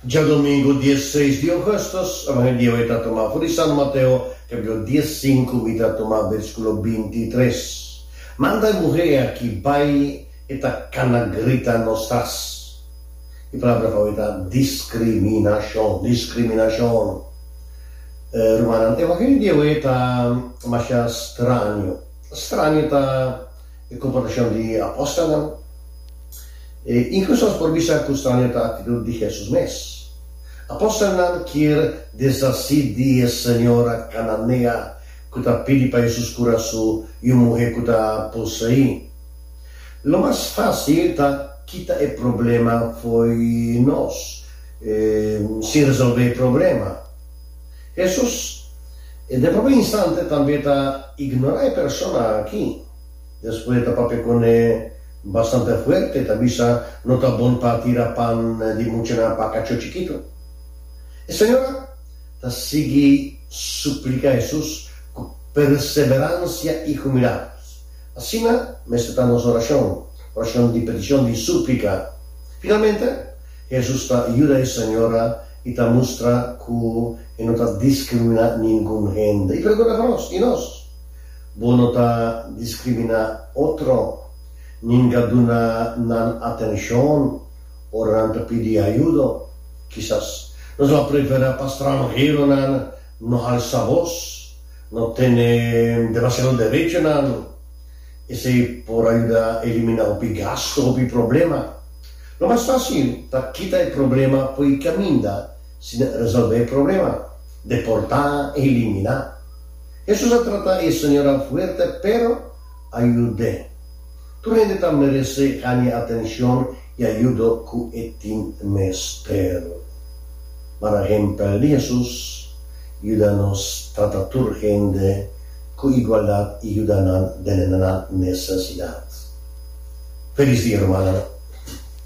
Djadomingu dies seis di ougustus, awan e diawe ta tuma for di San Mateo, kapitulo dies sinku, mi ta tuma bersikulo binti i tres. Manda e muhé e aki bai, e ta kana grita nos tras. E palabra fabio ta diskriminashon, diskriminashon. Rumannan, evangelio di diawe ta masha straño. Straño ta. E komportashon di e apòstelnan e inkluso nos por bisa ku standi un ta aktitut di Hesus mes. Apòstelnan kier deshasí di e señora kananea ku ta pidi pa Hesus kura su i un muhé ku ta poseí. Lo mas fásil ta kita e problema fo'i nos sin resolvé e problema. Hesus den pròpi instante tambe ta ignorá e persona akí. Despues ta papia cune bastante fuerte, ta bisa, No ta bon pa tira pan di muchanan pa cacho chikito. E señora ta sigui suplica Jesus cu perseverancia y humildad. Asina mester ta nos oracion, oracion di peticion, di suplica. Finalmente, Jesus ta yuda e señora y ta mustra cu e no ta discrimina ningun hende. Y pregunta pa nos, Y nos? Bo no ta diskriminá otro, nin ka duna nan atenshon ora nan ta pidi ayudo. Kisas nos lo a preferá pa stranheronan no halsa bos, no tene demasiado derechonan. Esei por a yuda eliminá hopi gastu, hopi problema. Lo mas fásil ta kita e problema poi kaminda sin resolvé e problema, deportá, eliminá. Hesus a trata e señoran fuerte, pero a yud'é. Tur hende ta merese haña atencion i ayudo cu e tin mester. Para hempel di Hesus, yuda nos trata tur hende cu igualdad i yuda nan den nan necesidad. Felis dia, rumannan!